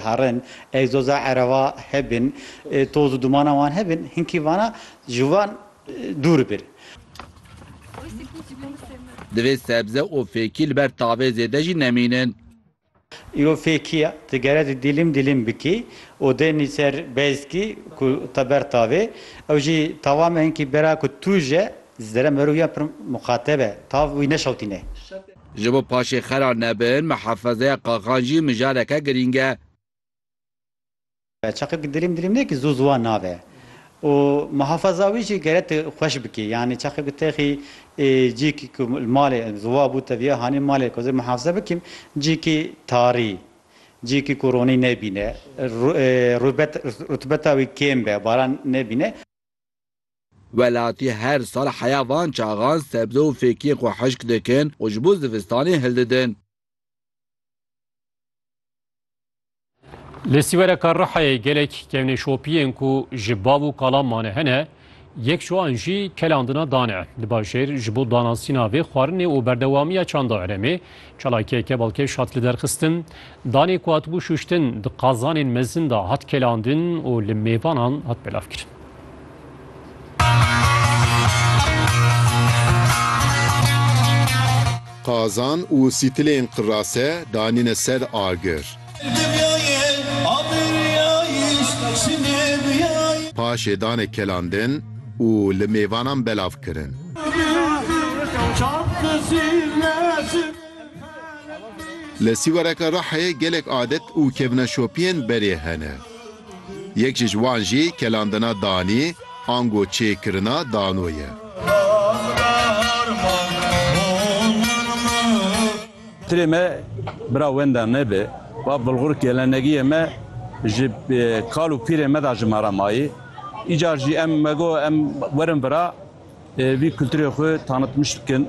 Harin, egzoza ereva hebin, toz û dumana wan hebin, hinkî vana ji wan dûr bir. Divê sebze û fêkî li ber tavê zêde jî nemînin. Îro fêkî ye, tu gere tu dîlim dîlim bikî û dênî ser bezkî ku te ber tavê, ew jî tawa me hinkî bera ku tu ji zere merûya pir muxateb e, tav wî neşewtîne. Ji bo paşê xera nebin, mihafezeya qaxan jî mijareke girîng e. Çaqê bi dilîm dilîm ne ki zû zûwa nabe û mihafeza wî jî gere tu xweş bikî. Yanî çaqê ku texî cîk ku li malê zûwa bû teviya hanî malê ku ez ê mihafeze bikîm cîkî tarî, cîkî ku ronî nebîne, rûbet rutubeta wî kêm be, baran nebîne. Welatî her sal heya van çaxan sebze û fêkiyên xwe hişk dikin û ji bo zivistanê hildidin. Li Sîwereka Rihayê gelek kevneşopiyên ku ji bav û kalan mane hene, yek ji wan jî kelandina dan e. Li bajêr ji bo danasîna vê xwarinê û berdewamiya çanda herêmê, çalakiyeke balkêş hat liderxistin. Danê ku hatibû şûştin di qazanên mezin de hat kelandin û li mêvanan hat belavkirin. Qazan û sîtilên qirase danîne ser agir. Paşê dane kelandin û li mêvanan belav kirin. Li Sîwareke Rihayê gelek adet û kevneşopiyên berê hene. Yek ji ji wan jî kelandina danî ango çêkirina dano ye. Tirê me bira wenda me bi. Va Bulgur gelenegiyê me ji kal û pîrên me da ji me re mayî. Îcar jî em me got em werin vira vî kulturê xwe tanitmiş bikin.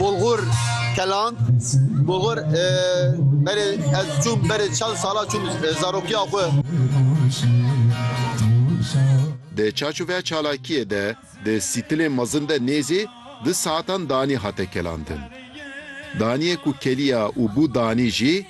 Bulgur Kelan Bulgur berê ez çûm berê çend sala çûm zarokiya xwe. Di çarçoveya çalakiyê de di sîtilê mezin de nêzî du saetan danî hate kelandin. Daniyê ku keliya û bû danî jî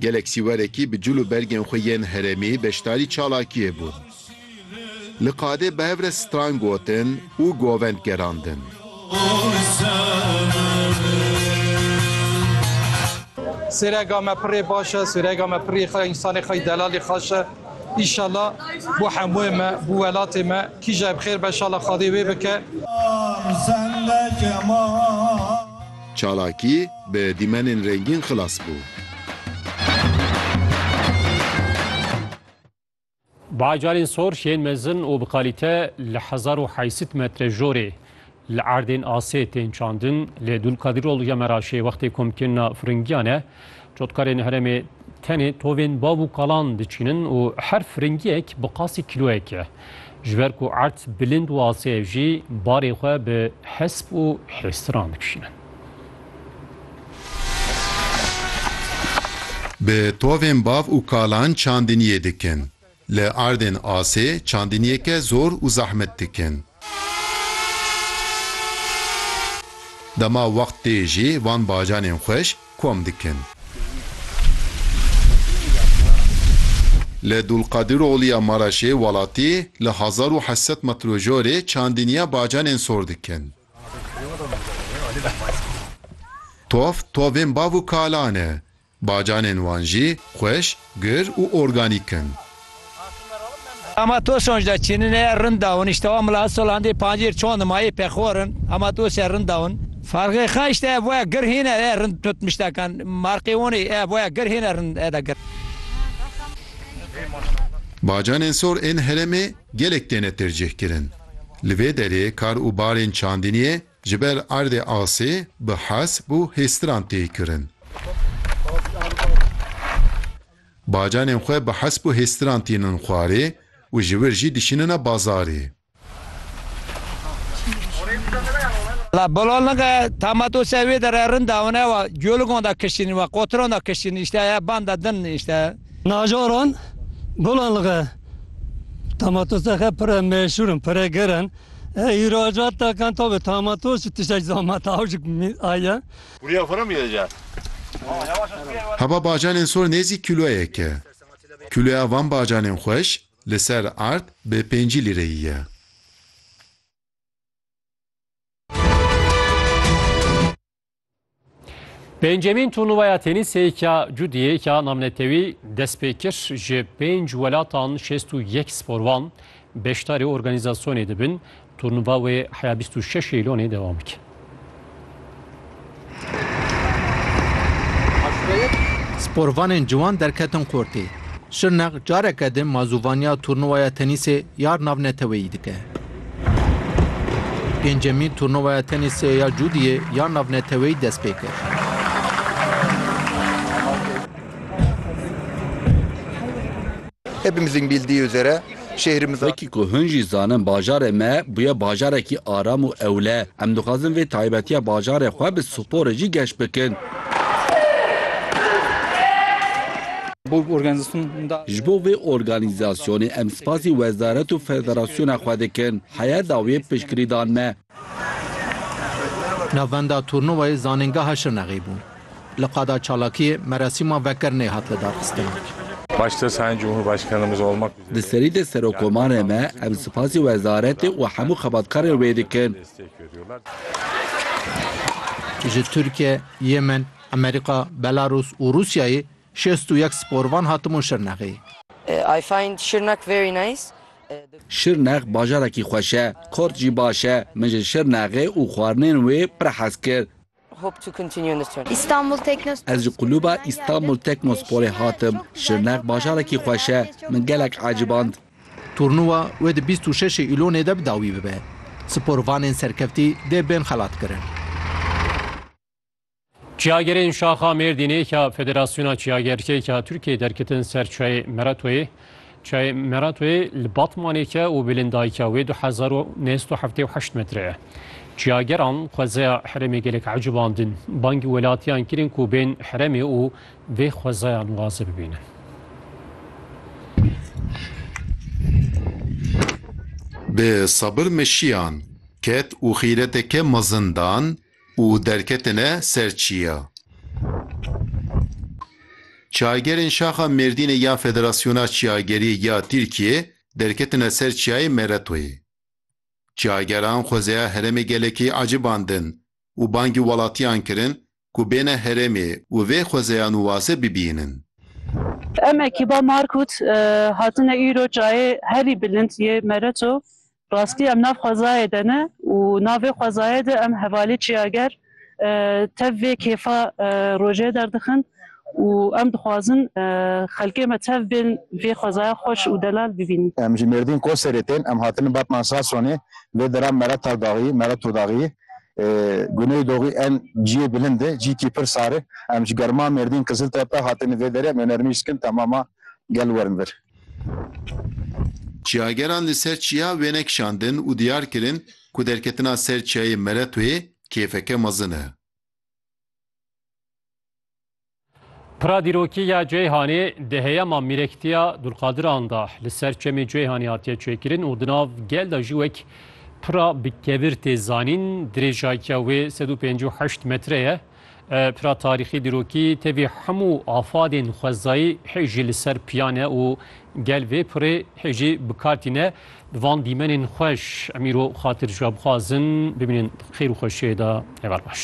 Gelek sîwerekî bi cil û bergên xwe yên herêmî beşdarî çalakiyê bûn. Li qadê bi hev re stran gotin û govend gerandin. Sêrega me pirê baş e, sêrega me pirê xwe ye, însanê xwe yî delalê xaş e. Îşallah bo hemûê me, bo welatê me kîje bi xêr be, şala Xwedê wê bike. Çalakî bi dîmenên rengîn xilas bû. Bajarên sor yên mezin û bi kalîte li hezar û heysîd metre jorê li erdên asê tên çandin lê Dulkadiroglu ya Meraşê wextê komkirina firingiyan e Cotkarên herêmê tenê tovên bav û kalan diçînin û her firingiyek bi qasî kîloyek e. Ji ber ku erd bilind û asê ev jî barê xwe bi hesp û hêstiran dikişînin. Bi tovên bav û kalan çandiniyê dikin. Li erdên asê çandiniyeke zor û zehmet dikin. Dema wext tê jî van bacanên xweş kom dikin. Li Dulqadiroglî ya Maraşê welatî li hezar û heşt sed metrojorê çandiniya bacanên sor dikin. Tov, tovên bav û kalan e. Bacanên wan jî xweş, gur û organîk in. Hema Tosunc de çînine ye rind dawin, îştewa Milat Solandê pancêr çon di mayê pexor in, hema dosye rind dawin. Farqê xwe îşte ev boya gur hîne ye rind tut mîştekan, marqê wonê ev boya gur hîne rind eda gur. Bacanên sor ên heremê gelek têne tercîh kirin. Li vê derê kar û barên çandiniyê, Ji ber erdê asê bi hesp û hêstiran tê kirin. Bacanên xwe bi hesp û hêstiran tînin xwarê û ji wir jî dişînine bazarê. La Bololinge, tama to ser wê derê rind e, hûn ewa coligon de kişînin we qotiron de kişînin îşte ya ban de din îşte. Nacaran, Bololinge, tama to ser xe pire meşûr in, pire gerr in. Îhracat da kan tabi tamato si tişek zama tavşik mi aye. Buraya fora mı gideceğiz? Heba bacanên sor nêzî kîloyek e. Kîloya van bacanên xweş li ser ard bi pêncî lîreyî ye. Pêncemîn turnuvaya tenîsê ya Cudiyê ya namnetewî dest pê kir ji pênc welatan şêst û yek sporvan beşdarê organîzasyonê dibin. Turnuva wê heya bîst û şeş Eylonê dewam bike. Sporvanên ciwan derketin qortê. Şirnex careke din mazûvaniya turnuvaya tenîsê ya navneteweyî dike. Pêncemîn turnuvaya tenîsê ya Cûdiyê ya navneteweyî dest pê kir. Hepimizin bildiği üzere şehrimiz Wekî ku hin jî zanin bajarê me bûye bajarekî aram û ewle. Em dixwazin vê taybetiya bajarê xwe bi sporê jî geş bikin. Ji bo vê organîzasyonê em spasî wezaret û federasyona xwe dikin. Heya dawiyê piştgirî dan me. Navenda turnuvayê Zanîngeha Şirnexê bû. Li qada çalakiyê merasîma vekirinê hat lidarxistin. Di serî de serokomarê me em spasî wezaretê û hemû xebatkarên wê dikin. Ji Tirkiye, Yemen, Amerîka, Belarûs û Rûsyayê şêst û yek sporvan hatibûn Şirnexê. I find Şirnak very nice. Şirnex bajarekî xweş e. Kort jî baş e. Min ji Şirnexê û xwarinên wê pir hez kir. Istanbul Teknospor Ez ji kulûba Istanbul Teknosporê hatim. Şirnex bajarekî xweş e. Min gelek eciband. Turnûwa wê di bîst û şeşê Îlonê de bi dawî bibe. Sporvanên serkeftî dê bên xelatkirin. Çiyagerên şaxa Mêrdînê ya Federasyona Çiyagerkek ya Tirkiyeyê derketin ser çayê Meratoyê. Çayê Meratoyê li Batmanê ke û bilindayîka wê du hezar û neh sed û heftê û heşt metre ye. Çiyageran xwezeya herêmê gelek ecibandin. Bangî welatiyan kirin ku bên herêmê û vê xwezaya nuwaze bibînin. Bi sabir meşiyan, ket û xîreteke mezin dan Û derketine ser çiya. Çagerên şaxa Mêrdînê ya Federasyona Çiyagerî ya Tirkiyê derketine ser çiyayê Meretoyê. Çiyageran xwezeya herêmê gelekî ecibandin û bangî welatiyan kirin ku bêne herêmê û vê xwezeya nû waze bibînin. Em ekiba Markut hatine îro çayê herî bilind yê Mereto Rastî em nav xwezayê de ne û nav vê xwezayê de em hevalî çiyager tev vê kêfa rojê derdixin û em dixwazin xelkê me tev bên vê xwezaya xweş û delal bibînin. Em ji Mêrdîn Koserê tên, em hatine Batman Sasonê, lê dera me re Taldaxiyî, me re Todaxiyî, Guney Doxî en ciyê bilind e, cîkî pir sar e. Em ji germa Mêrdîn Qiziltepe hatine vê derê, em ê nermî skin temama gel werin vir. Çiyageran li ser çiya wêne kişandin û diyar kirin ku derketina ser çiyayê Meretoyê kêfeke mezin e. Pira dîrokî ya Ceyhanê di heyama mîrektiya Dulqadiran de li ser çemê Ceyhanê hatiye çêkirin û di nav gel de jî wek pira bi kevir tê zanîn. Dirêjakiya wê sed û pêncî û heşt metre ye. Pira tarîxî dîrokî tevî hemû afadên xwezayî hê jî li ser piyan e û gel vê pirê hê jî bi kar tîne. Di van dîmenên xweş em îro xatir ji we bixwazin bimînin xêr û xweşiyê de. Heval baş.